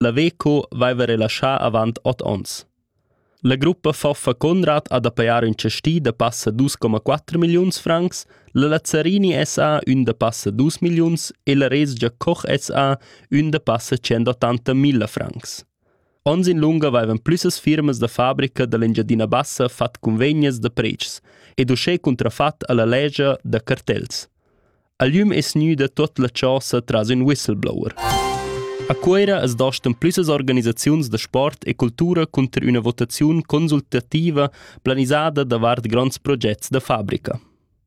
La Veco vaiva relaschà avant ot ons. La gruppa Foffa Conrad ha da pajar ün chastì da passa 2,4 milliuns francs, la Lazzarini SA ün da passa 2 milliuns e la Resgia Koch SA ün da passa 180 milla francs. Ons in lunga vaivan plüssas firmas da fabrica da l'Engiadina Bassa fat cunvegnas da predschs ed uschè cuntrafat a la legia da cartels. Agliüm es gnüda tuot la chosa tras ün whistleblower. A Cuera as dastan plüssas organisaziuns da sport e cultura cunter üna votaziun consultativa planisada davart grands progets da fabrica.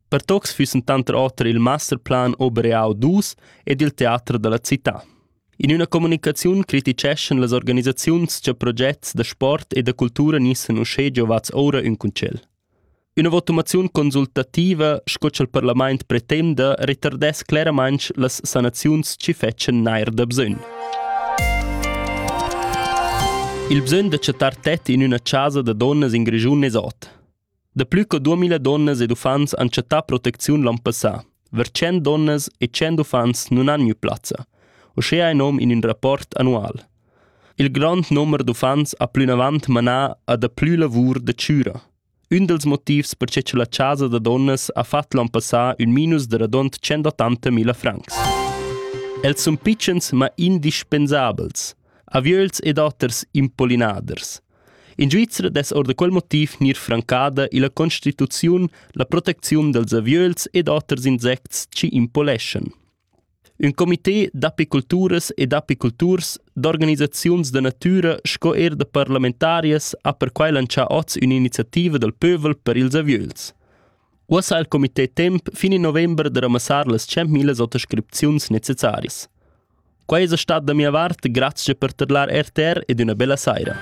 Per tocs füssen tanter oter il masterplan Obereau dus ed il teater da la città. In üna comunicaziun criticeschan las organisaziuns cha progets da sport e da cultura nissen uschè giovats oura ün concel. Üna votumaziun consultativa sco cha'l parlamaint pretenda retardess cleramainch las sanaziuns chi fetschan neir da bsögn. Il bsögn da chattar tet in üna chasa da donnas in Grischun es ot. Da plü co 2000 donnas ed uffants han chattà protecziun l'an passà. Ver 100 donnas e 100 uffants nun han gnü plazza, uschea in nom in ün rapport annual. Il grond nomer d'uffants ha plünavant manà a daplü lavur da chüra. Ün dals motivs perche cha la chasa da donnas ha fat l'an passà ün minus da radund 180.000 francs. Els sun pitschens ma indispensabels, aviöls ed oters impollinaders. In Svizra dess or da quel motiv gnir francada illa constituziun la protecziun dals aviöls ed oters insects chi impoleschan. Ün comité d'apiculturas e d'apiculturs, d'organisaziuns da natüra sco eir da parlamentarias ha perquai lantschà hoz ün'iniziativa dal pövel per ils aviöls. Uossa ha il comité temp fin in november da ramassar las 100.000 autoscripziuns necessarias. Quai esa stat da mia vart grazcha per tadlar RTR ed üna bella saira.